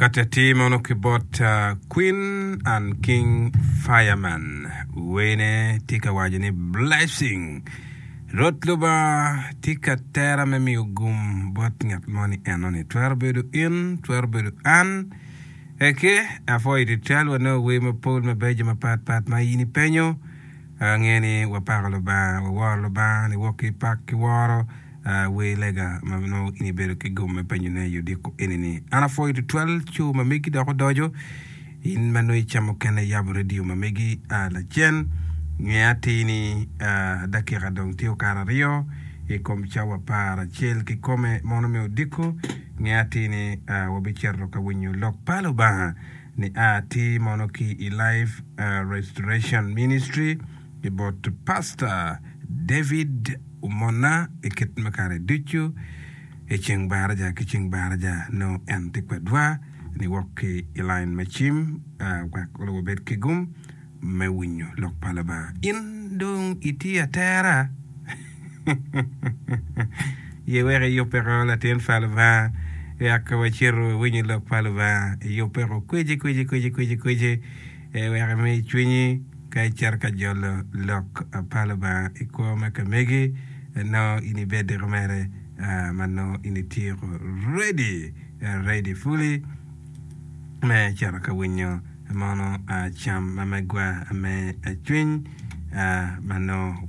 Kati atir mono ki bot uh, Queen and King Fireman. Wene tye ka waco ni blessing. Rwot Lubanga tye ka tera me miyo gum bot ngat mo ni enoni. Twero bedo in, twero bedo an. Eke, apwoyo tutwal wanongo wer mapol mabeco mapatpat ma in ipenyo. Angeyo ni wapako Lubanga, waworo Lubanga, niwok ki pak ki woro. Wer lega ma nongo in ibedo ki gom me penyone i odiko enini. An apwoyo tutwal co ma megi dok odoco. In ma nongo icamo kene iyabo redio ma megi lacen, nge atir ni dakika dong tye okato aryo i kom cawa apar acel kikome mono me odiko. Nge atir ni wabicito ka winyo lok pa Lubanga. nia ti mono ki i Life Restoration Ministry ki bot Pasta David Umona i kit me kare ducu, i ceng baraja ki ceng baraja nongo en ti kwedwa ni wok ki i line me cim wek onongo wabed ki gum. me winyo lok pa Labanga. In dong itye atera? Ye wek iyubbeko latin pa Lubanga wek wacito wawinyo lok pa Lubanga. Iyubbeko kweci kweci kweci kweci kweci wek imi cwinyi ka icito ka jolo lok pa Lubanga i kwo me kamegi nongo in ibediko mere ma nongo in ityeko ready ready fully me cito ka winyo mono cam ma megwa me cwiny ma nongo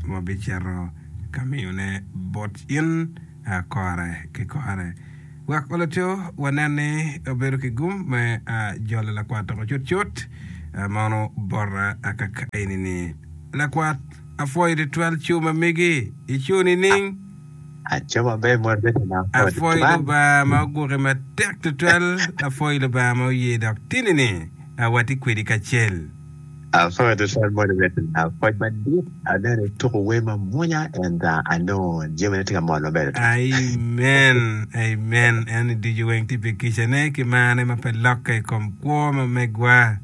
wabicito ka miyone bot in kore ki kore. Wek Laco wanen ni obedo ki gum me jolo lakwat toko cutcut, mono bota kaka enini, Lakwat, apwoyo twatwal cu ma megi icu nining? Apwoyo Lubanga ma oguki matek tutwal, apwoyo Lubanga ma oye dok tini ni awati kwedi kacel. Apwoyo tutwal moni Bettina, pwoc madit aneno ituko wer mamwonya ento anongo jamina tye ka mol maber tutwal. Amen amen en i ducu weng tye pi kica ne ki mar ne ma pe lokke i kom kwo ma megwa.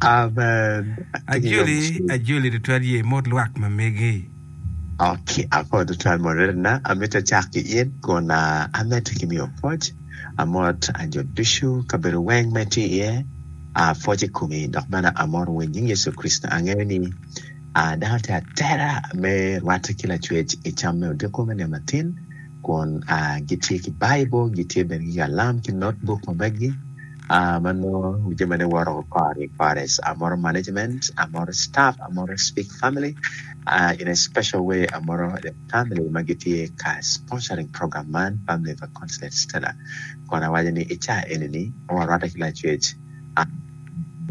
Amen. Ajoli ajoli tutwal ye mot lwak ma megi. Oki akoyo tutwal murerena, amitte cak ki in kun amitte ki miyo pwoc. Amot a jo ducu, kabedo weng ma itye iye, a pwoc i komi dok bene amoto wa i nying Yecu Kricito. Angeyo ni a dano tye atera me rwatte ki lacwec i cam me odiko me nino matin kun a gitye ki Baibul, gitye bene ki kalam ki notbuk ma meggi. Aa ma nongo jami ne woro party parties amoro management amoro staff amoro speak family aa in a special way amoro the family ma gitye ka sponsoring program man family pa Consolate Stella kun awaco ni i caa eni ni warwatte ki lacwec aa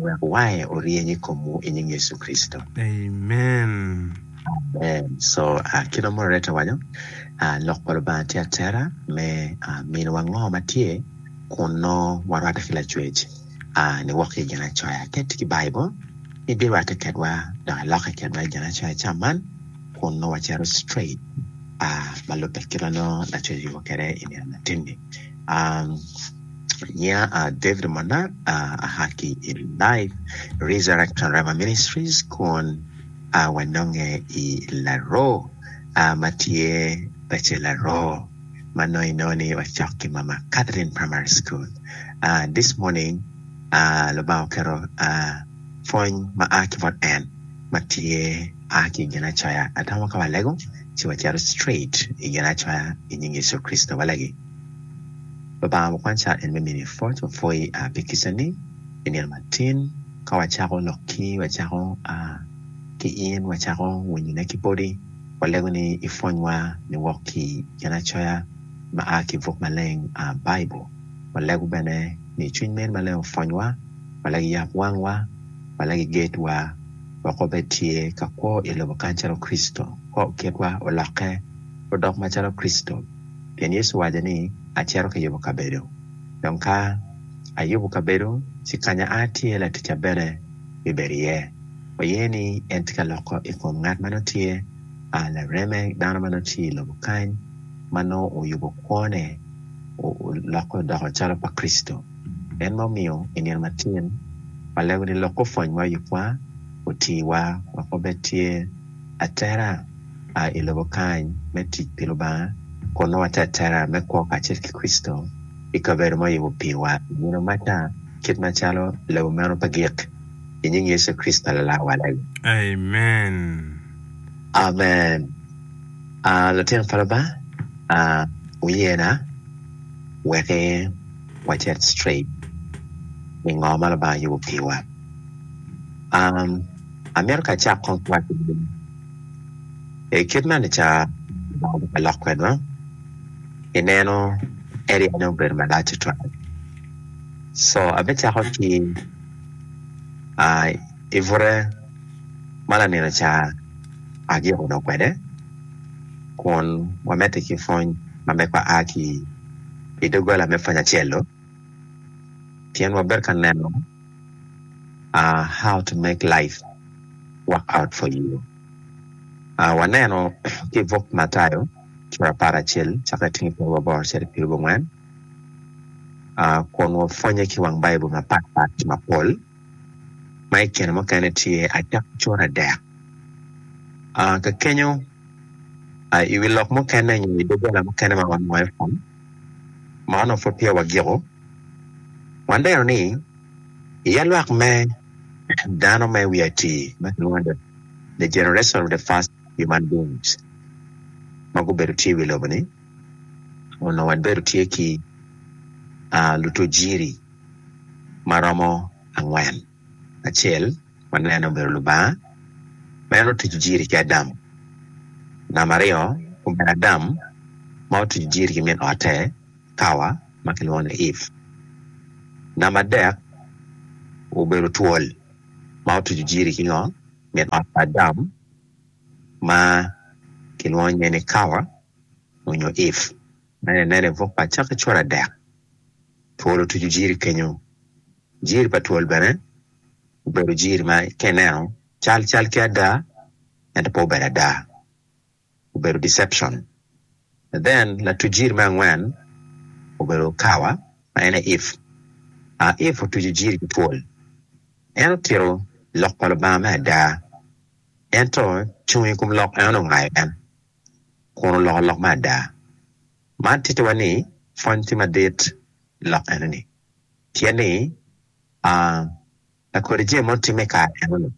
wek wange oryeny i komwu i nying Yecu Kricito. Amen. Amen so aa kit ma moderator owaco aa lok pa Lubanga tye atera me aa miniwa ngo ma tye kun nongo warwatte ki Lacwec a ni woko ki i Ginacoya. Ka itye ki Baibul, ibirwatte kedwa dok ilokke kedwa i Ginacoya ca man, kun nongo wacito straight a ma lubbe kit ma nongo Lacwec oyubo kwede i nino latinni. Nyinga a David Omonar, aa ki i Life Resurrection Rhema Ministries kun wanonge i Laroo ma tye pacce Laroo. ma nongo inongo ni wacok ki mama Catherine primary school uh, this morning uh, Lubanga oketo uh, pwony ma a ki bot en ma tye a ki i Ginacoya atamo ka walego ci wacito straight i Ginacoya i nying Yecu Kricito walegi Lubanga mukwany car en me mini pwoc wapwoyi uh, pi kica ni i nino matin ka wacako lok ki wacako uh, ki in wacako winyone ki bodi Walego ni ipwonywa ni wok ki i Ginacoya ma a ki buk maleng, Baibul. Walego bene ni Cwiny Meri Maleng opwonywa, walego iyab wangwa, walego igedwa wek wabed tye ka kwo i lobo kany calo Kricito, kor kitwa olokke odok macalo Kricito. Pien Yecu owaco ni, Acito ka yubo kabedo. Dong ka ayubo kabedo, ci kanya a tye laticca bene bibedo iye. ma ye ni en tye ka loko i kom ngat ma nongo tye lareme dano ma nongo tye i lobo kany ma nongo oyubo kwone olokke odoko calo pa Kricito en ma omiyo i nino matin ma lego ni lok opwony ma oyubwa oti wa wek wabed tye atera i lobo kany me tic pi Lubanga kun nongo watye atera me kwo kacel ki Kricito i kabedo ma oyubo piwa i nino maca kit macalo lebo meno pe gik. i nying Yecu Kricito Lala wa lali. Amen. Amen. Ah, lutino pa Lubanga, ah, wuyena wek wacit straight i ngo ma Lubanga yubo piwa. Um, amito ka acak kong ki waco ni, i kit ma nica Lubanga obika lok kwedwa, i neno area ne obedo malac tutwal. So, abicako ki. i bute ma lanin oca agik odok kwede kun wamedde ki pwony ma megwa a ki i doggola me pwony acel-lu pien wabedo ka neno how to make life work out for you waneno ki i buk Matayo cura apar ki acel cako ki i tyeng pwonye ma bor cito i pyerabongwen. kun wapwonye ki wang Baibul mapatpat mapol ma i kine mukene tye acakki cura adek. Ka kenyo i wi lok mukene nyo i wi doggola mukene ma wanongo iye pwony ma onongo pud peya wagiko, waneno ni iye lwak me dano me wiye atir ma kilwongo ni the generation of the first human beings ma gubedo tye i wi lobo-ni, onongo wabedo tye ki lutajiri ma romo angwen, acel wanene obedo Lubanga ma en otuco jiri ki Adam, namba aryo obedo Adam ma otuco jiri ki min ote Kawa ma kilwongo ni Eve, namba adek obedo twol ma otuco jiri ki ngo min ot pa Adam. ma kilwongo nyinge ni Kawa onyo If ma eni aneno i buk pa Acakki cura adek, twol otucu Jiri kenyo, Jiri pa twol bene obedo Jiri ma ka ineno cal cal ki ada ento pe obedo ada obedo deception and then latuc Jiri me angwen obedo Kawa ma en aye If, If otucu Jiri ki twol en otito lok pa Lubanga me ada. Ento cung i kom lok eno nongo aye en, kun oloko lok me ada. Man tittiwa ni pwony tye madit i lok enoni, pien ni lakodi jami mogo timme i kare enoni,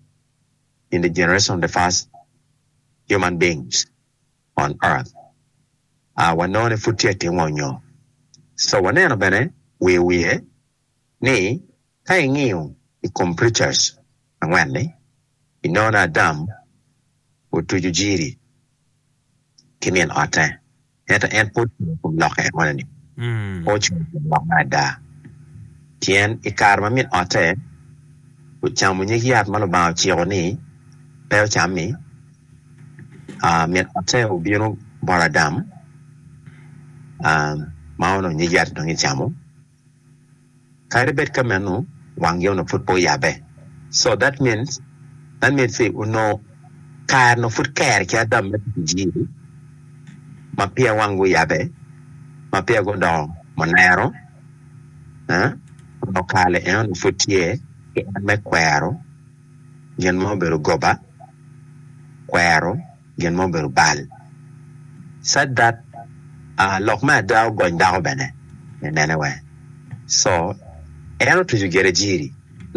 in the generation of the first human beings on earth, wanongo ni pud tye ka timo nyo. So waneno bene wiye wiye. ni ka ingiyo i kom preachers angwen-ni, inongo Adam otuco Jiri ki min otte, ento en pe ocung i kom lokke enoni, pe ocung i kom lokke ada. Pien i kare ma min otte ocamo nyig yat ma Lubanga ociko ni pe ocam-mi, min otte obino bot Adam ma onongo nyig yat-ti dong ecamo. Kadi bed ka meno, wangi onongo pud pe oyabbe. So that means, that means ci onongo kare onongo pud ker ki Adam me tic ijiri ma peya wangi oyabbe, ma peya gudongo munero, eh, onongo kare-ni en onongo pud tye ki en me kwero gin ma obedo goba, kwero gin ma obedo bal. Sad that uh lok me ada ogony dako bene me nene wee so en otucu gerejiri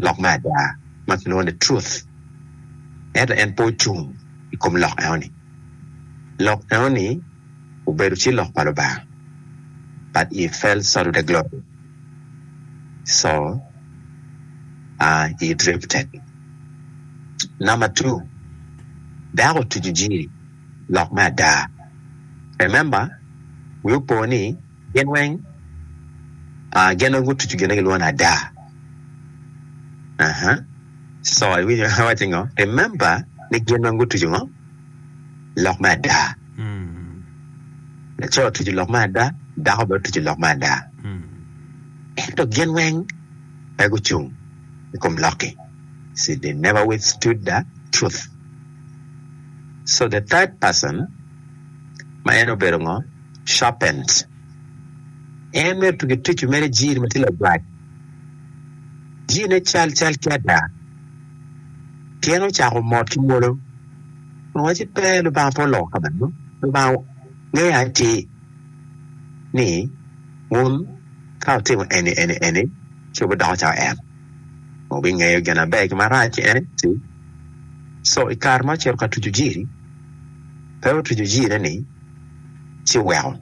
lok me ada ma kilwongo ni truth ento en pe ocung ikom lok enoni lok enoni obedo ci lok pa Lubanga, but he fell short of the glory, so he drifted. Number two, dako otuco jiri lok me ada. Remember, wi opo ni gin weng gin weng gutuco gin ma gilwongo ni ada. Uh-huh. So iwinyo awacci ngo? Remember ni gin weng gutuco ngo? lok me ada. Laco otuco lok me ada, dako bene otuco lok me ada, ento gin weng pe gucung i kom lok-ki, see they never withstood the truth. So the third person ma en obedo ngo? Serpent. En mere pe gituco mere jir ma tye lagwac, jirne cal cal ki ada. Tyen ocako mot ki mwolo, owacci, Pe, Lubanga pe oloko ka meno. Lubanga ngeyo atir ni wun ka wutimo eni, eni, eni, ci wubidoko calo En. Wubingeyo gin maber ki gin marac ki En. Co i kare ma ocito ka tuco jiri, pe otuco jirine-ni ci oweko,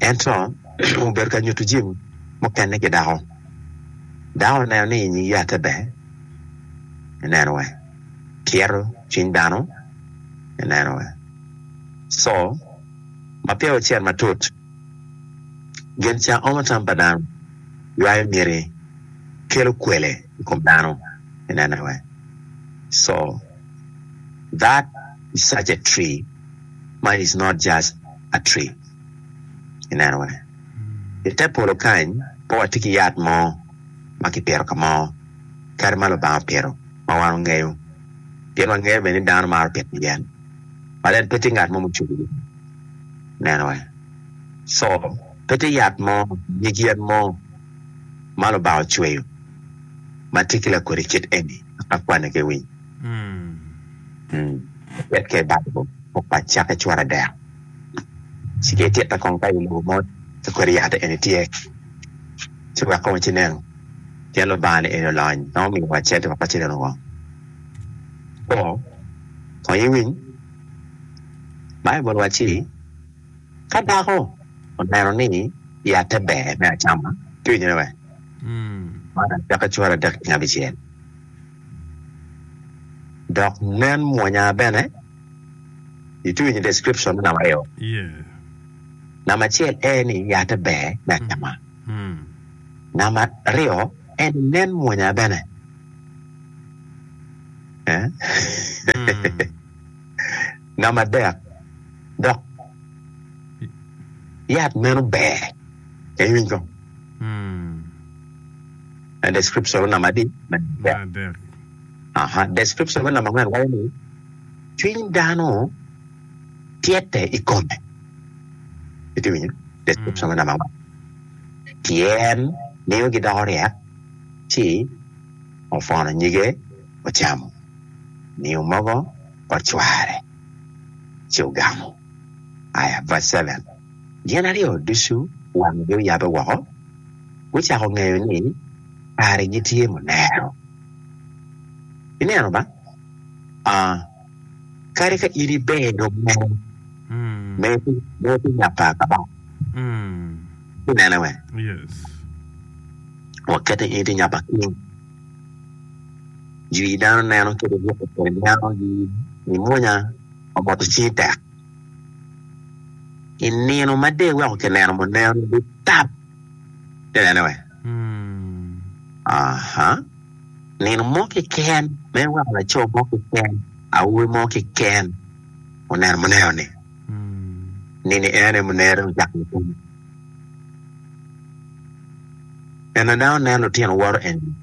ento obedo ka nyuto jami mukene ki dako. Dako oneno ni nyig yatte ber, ineno wa, kyeto cwiny dano, ineno wa. Co ma peya wucito matut, gin ca omo tam pa dano, ywayo miti, kelo kwele i kom dano, ineno wa. So that is such a tree ma is not just a tree, ineno wa. I te polo kany, pe watye ki yat mo ma kipito ka mo kadi ma Lubanga opito ma wan wangeyo, pien wangeyo bene ni dano maro pito yat, but en pe tye ngat mo mucung nenowa. So, pe tye yat mo, nyig yen mo ma Lubanga ocweyo ma tye ki lakodi kit eni dok lakwanne kiwiny. Ket ka i Baibul, pok pa cake cware dek. ci ki ititte kong ka i lobo mot ci kodi yat eni tye ci wek kong ci neno pien Lubanga ni eni olony ma omiyo wa cet wek wacit enongo woko kwo kong iwiny Baibul wacci ka dako oneno ni yatte ber me acama ci winyo ne wer man acwaki cwalo adek nyo abicel dok nen mwonya bene. Ituo winyo description me namba aryo? Yeah. Namba acel en ni yate ber me acama. Mm. Namba aryo en ni nen mwonya bene. Eh? Mm. Namba adek dok yat meno ber. Iwiny ko? Mm. En description namba adi? Namba adek. Description me namba angwen waco ni cwiny dano tyete i kome. Iti winyo? Description me namba angwen. Tyen miyo gidoko ryek ci opwono nyige ocamo. Miyo mogo ocware ci ogamo. Aya verse seven. Gin aryo ducu wanggi oyabe woko, gucako ngeyo ni karegi tye munero. Ineno ma? Aa, kadi ka in iber dong mere, mere pi, mere pi nya pa Kabaka. Inene we? Waket ni in itye nya pa King. Jwi dano neno kit i ruko kodi, neno, i munya, omoto cingi tek. I nino ma de iweko kineno muneno ni tap. Inene we? Aha. Nino mo kiken ma iweko laco mo kiken, awobi mo kiken oneno muneno ni. Nini ene munere ocako lupim. Neno na onen lutino woro eni.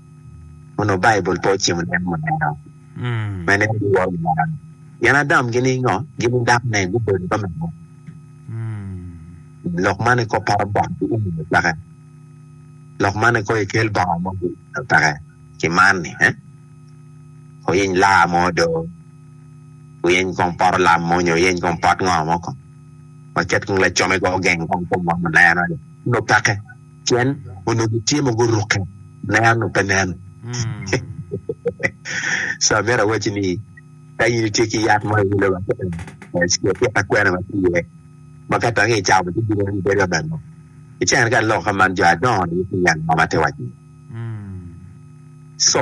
Onongo Baibul pe ocimo neno muneno. mene en biworo Lubanga. Gin Adam gin ningo? Gin nidak ne gubedo ka me lok. Lok man iko paro bot ki umi me peke. Lok man iko ikel bongo mo ki me peke ki man ni eh oyiny laa mo do, oyiny kong poto lam mo nyo oyiny kong pot ngo mo kong waket kong lacome kong ogeng kong kom wa malena ni nyo peke. Cen onongo gitye mogo orukke, ler onongo pe nen. So myero awacci ni ka in itye ki yat mo iwilo wa kene, cika itit ka kwena ma tye iye ma ka tange icamo ci bino ni bedo abalo. I cene ka lok ka man jo adongo ni ki yat mo ma te waco iye. So,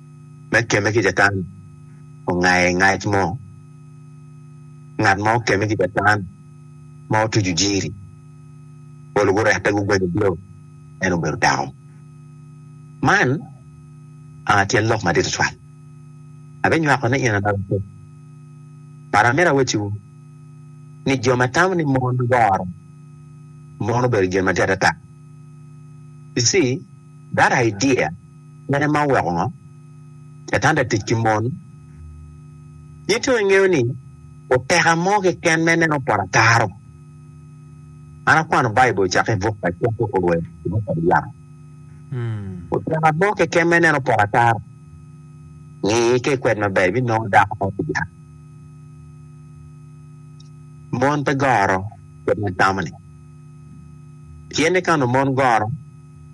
me kemme ki Catan ongaye ngac mo. Ngat ma okemme ki Catan ma otuco jiri, polo gurette gugwenyo odilo, en obedo dako. Man aa tyen lok madit tutwal. Abinywako ni in anaka kop. But amito awecciwu ni jo ma tamo ni mon goro mon obedo gin matir adada. You see that idea. Mene ma oweko ngo Catan-ta tic ki mon? In tung ingeyo ni oteka mo keken ma ineno poto ataro? An akwano Baibul cake i buk pa Cwako Owe i buk pa Lubanga. Oteka mo keken ma ineno poto ataro? Ngi ka ikwed maber ibinongo dako mo ki dyang. Mon pe goro kit ma itamo-ni. Pien ni ka onongo mon goro,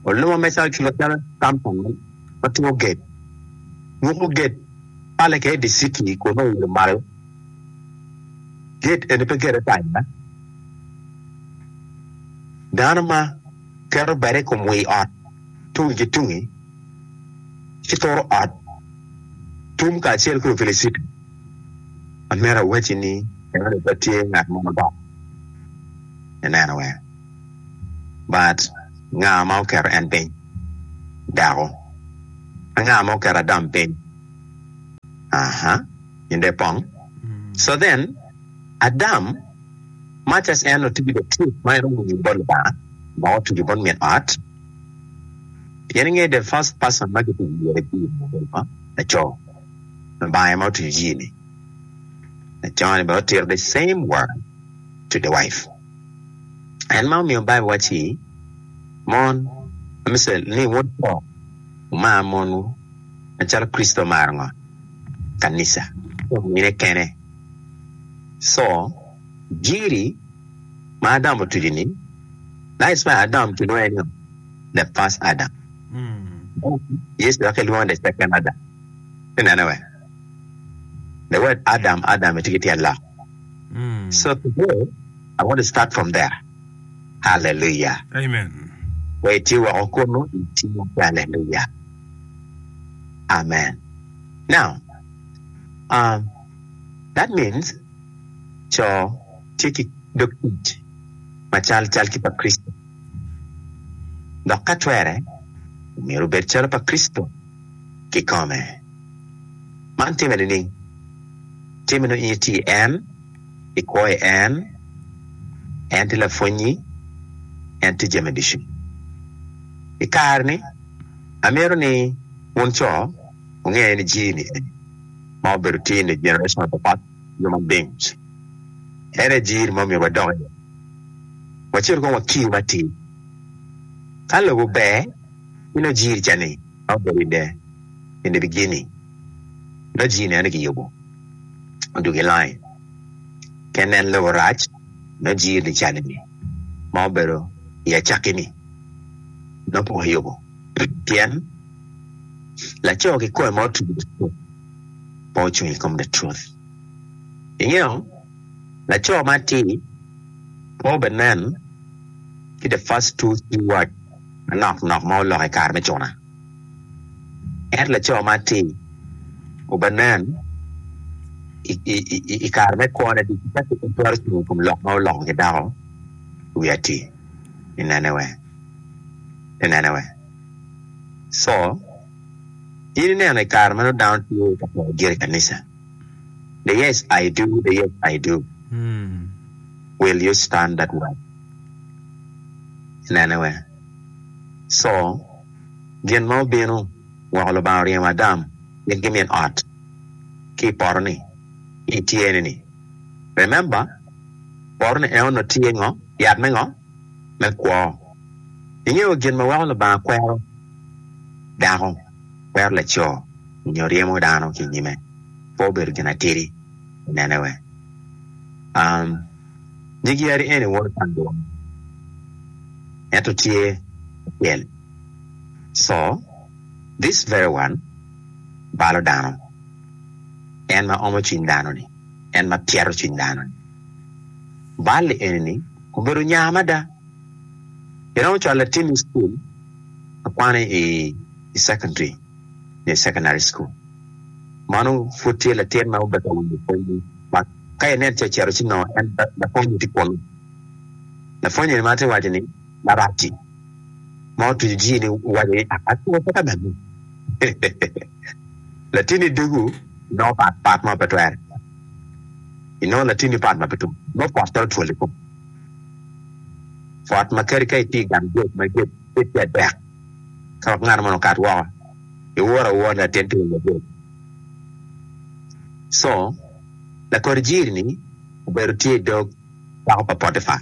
Oluma me Circuit macalo Company ma timo gate, muku gate pale ki Eddy City kun nongo oilo malo. Gate eni pe gate ata aye. Dano ma keto bade i kom wii ot tungi ki tungi ci turo ot tum kacel ki luwil city. Amyero awacci ni enoni pe tye ngat mo ma dok ineno weng. But nga ma oketo en piny? Dako. Anga ma oketo Adam piny? Aha, in dong ipong. So then, Adam, much as en otiyo the truth ma en owinyo bot Lubanga, ma otuco bot min ot, pien ingeyo the first person ma kituco iye jii ni obedo ngo? Laco. Lubanga ema otuco jii ni. Laco ni bene otito the same word to the wife. En ma omiyo Baibul wacci ni, Mon, ame cel, ni wutto, wumar monwu, macalo Kricito omaro ngo? Kanica, ci omine kene. Co, Jiri ma Adam otucu ni, Nice me Adam ki lwonge ni ngo? The first Adam. Yecu dok ki lwonge the second Adam. Inene we? The word Adam, Adam itye ki tyen lok. Mm. So today, I want to start from there. Hallelujah. Amen. Where itye woko kunu, itye hallelujah. Amen. Now, um, that means co tye ki dog tic macal cal ki pa Kricito. Dok ka twere, myero obed calo pa Kricito. kikome. Man timme nining? Timme nongo in itye i en, ikwo i en, en tye lapwonnyi, en tye jami ducu. I kare-ni, amito ni wun co wunge ni Jimmy eni ma obedo tye inge jenereson apapat jo ma Bing's, en aye jiri ma omyero wadok iye, wacit kong wakir matir. Ka lobo ber. Gin ajir ca ni ka obedo i dee nyo i geni nongo jii neno ni kiyubo odug i lain ki anen lobo rac nongo jir ni cal ni ma obedo i acakki ni nongo poko yubo pien laco kikome ma otugo tuko pe ocung i kom the truth ingeyo laco ma atir pe obe nen ki the first two three words manok nok ma oloko i kare me cuna. Ento laco man tye oba nen i kare me kwone ducu ka tuk twero cung i kom lok ma oloko ki dako i wi atir i nene weng i nene weng co in i neno i kare ma nongo dano tye ka poro giri i kanica the yes I do the yes I do. Will you stand that way? Inene wee. So, gin ma obino, weko Lubanga oryemo Adam mit gi min ot ki i poto ni, ki i tye ni ni. Remember, poto ni en onongo tye ngo? Yat me ngo? Me kwo. Ingeyo gin ma weko Lubanga kwero dako, kwero laco, nyo ryemo dano ki i nyime? Pe obedo gin atidi. onene weng. Um, nyig yadi eni woto ka adwogo ni, ento tye acel, so, this very one, balo dano, en ma omo cwiny dano ni, en ma pyeto cwiny dano ni. Bal-li eni ni obedo nya mada. I romo cwalo latin i cukul, akwano i, i secondary, nyo i secondary school. Mano pud tye latin ma obedo ka winyo pwony-nyi. Ma ka inen ce cito ci nongo en lapwonye tye kunu. Lapwonye ma tye waco ni, Larac-ci ma otuco jii ni owaco ni, Akwor pe ka neni. Latinni doggu inongo pat pat ma pe twere. Inongo latinni pat ma pe tum. Nongo pot twero twol i kome. Pot ma kadi ka itye i gang gurofa ma gurofa tye adek ka ngat moni okato woko, Iwor awor latin timo maber. Co, Lakor jiri-ni obedo tye i dog dako pa Potipa.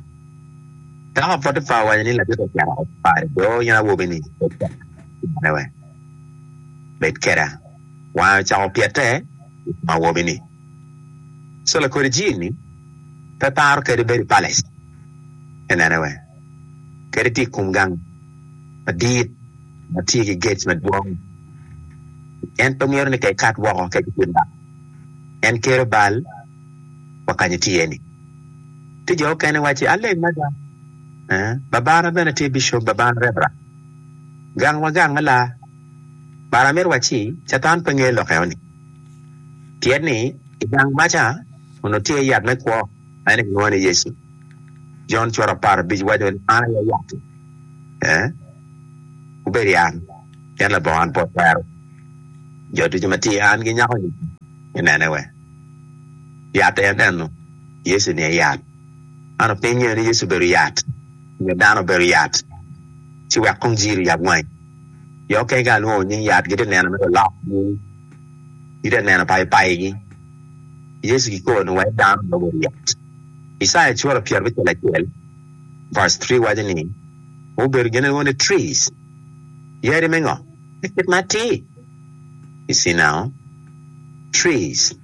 Dako pa Potipa owaco ni, Labit ocito ot pa do in awobi-ni, bed kweda. Cimone wek bed kweda. Wange ocako pyete i kom awobi-ni. Co, Lakor jiri-ni pe paro kadi bedo i palace. Inene wek kadi tye i kom gang madit. ma tye ki gec madwong. En pe mito ni ka ekat woko kec otim bal. En kero bal wa ka nyo tye iye-ni. Tye jo mukene wacci, Aleng mada. Babana bene tye bicop, babana rebra. Gang wa gang me laa. Bara myero wacci, Catan pe ngeyo lok eno-ni. Pien ni i gang ma ca onongo tye iye yat me kwo ma en aye kilwongo ni Yecu. Jon cura apar abic waco ni, An aye yat-ti. Wubed i an, pien labongo an pwod twero. Jo ducu ma tye i an ginyako nyig me nene wek yat aye neno. Yecu ni aye yat. Man opiny ngeyo ni Yecu obedo yat, nyo dano obedo yat, ci wek kong jiri oyab wangi. Jo okene ka alwongo nying yat gitye neno mere olok nying, gitye neno payo payi gi. Yecu kikobo ni wek dano nongo obedo yat. Icaya cura pyerabicel acel verse three waco ni, mubedo gin lwongo ni trees, yadi me ngo me kit ma atir, i Cinao, trees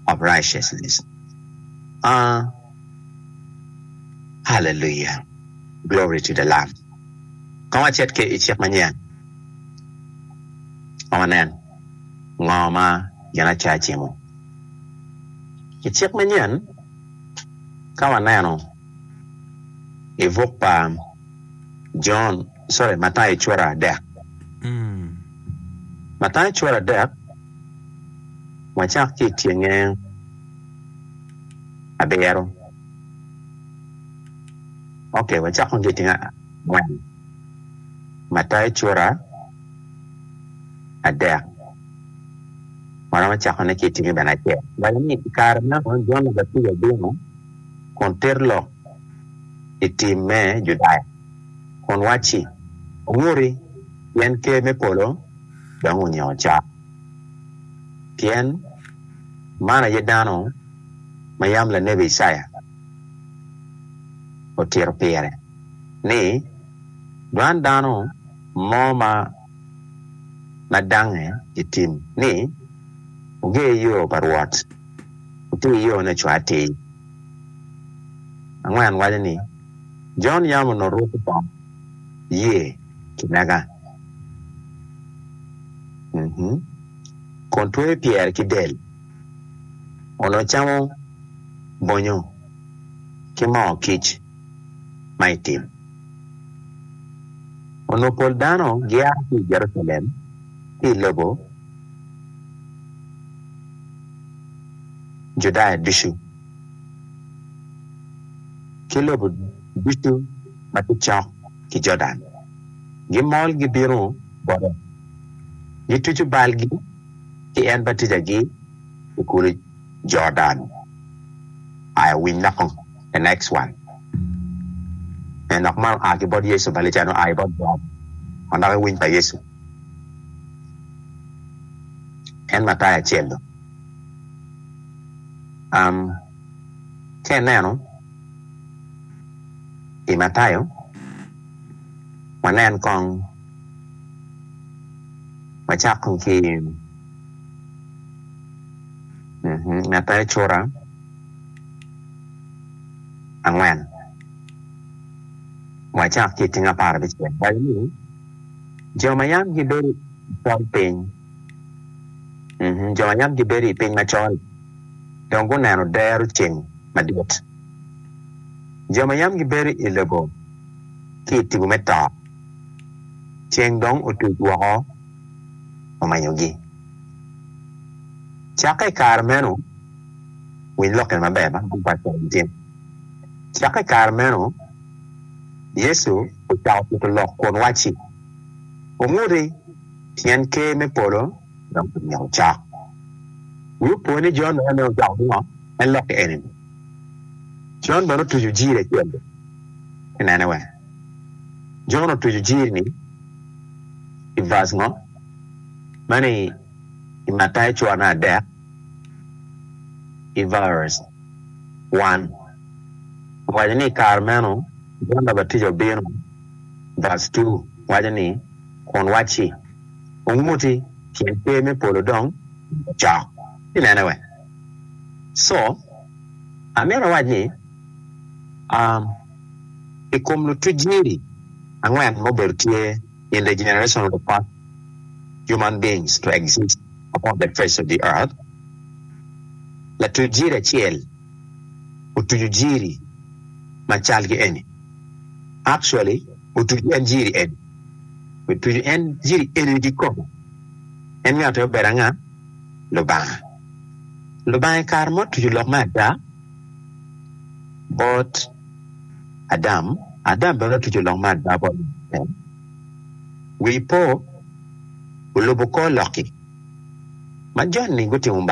of righteousness. Aa, Hallelujah! Glory to the Lamb! Kong wacit ki i cik manyen, kong wanen ngo ma gin acaci-mu. I cik manyen, ka waneno. i buk pa Jon, sorry Matayo cura adek. Matayo cura adek wacak ki i tyenge abiro, okay wacak kong ki i tyenge angwen, Matayo cura adek waromo cakone ki i tyenge bene acel, waci ni i kare ma Jon Mubatijo obino. kun ter lok i tim me Judaya, kun wacci, Wuri, pien Ker me polo dong onyingo cok. Pien man aye dano ma yam lanebi Icaya otito pire, ni, Dwan dano mo ma. ma dange i tim ni, Wuger yo pa Rwot, wutir yone ocwa atir. Angwen waco ni, Jon yam onongo rwoko bongo ye ki mega, kun tweyo pyere ki del, onongo camo bonyo ki moo kic. ma itimo. Onongo pol dano gia ki i Jerucalem ki i lobo Judaya ducu ki lobo ducu ma tye cok ki Jordan, gimol gibino bote, gituco balgi ki en batijagi i kulu Jordan. Aa, winy naka! The next one Pien dok man oa ki bot Yecu, Balican oa i bot God, ma dok i winy pa Yecu, en Mattai acel-lu. Um Ka ineno i Matayo, wanen kong, wacak kong ki i, um Matayo cura. angwen wacak ki i tyeng apar abicel waco ni jo ma yam gibedo macol piny jo ma yam gibedo i piny macol dong guneno dero ceng madit jo ma yam gibedo i lobo ki i tipo me to ceng dong otuc woko omenyogi cakke i kare meno. Winy lokke maber ma man pat cok nikin. Cakke i kare meno, Yecu ocako tito lok kun wacci, Wunguti, pien Ker me polo dong omyero cok. Wi opo ni Jon ma nen ocoko ki ngo? En lokke eni-ni. Jon bene otuco jiri acel-li. Tinene wene? Jon otuco jiri-ni i vas ngo? Meno i Matayo cura me adek. i Vers. One, owaco ni i kare meno Jon Labatija obino, Vers. Two waco ni, Kun wacci, Wunguti, pien Ker me polo dong ocok. Inene wek? Co, amito awac ni, um, i kom lutuc-ci angwen ma obedo tye, in the generation of the first human beings to exist upon the face of the earth, latuc jiri acel otuco jiri ma cal ki eni, actually otuco en jiri eni, otuco en jiri eni kikome, en ngat aye obedo anga? Lubanga. Lubanga i kare ma otuco lok me ada bot. Adam, Adam bene otuco lok me ada bot lok mukene. Wi ipo, olubo kor lok-ki ma joni gutimo.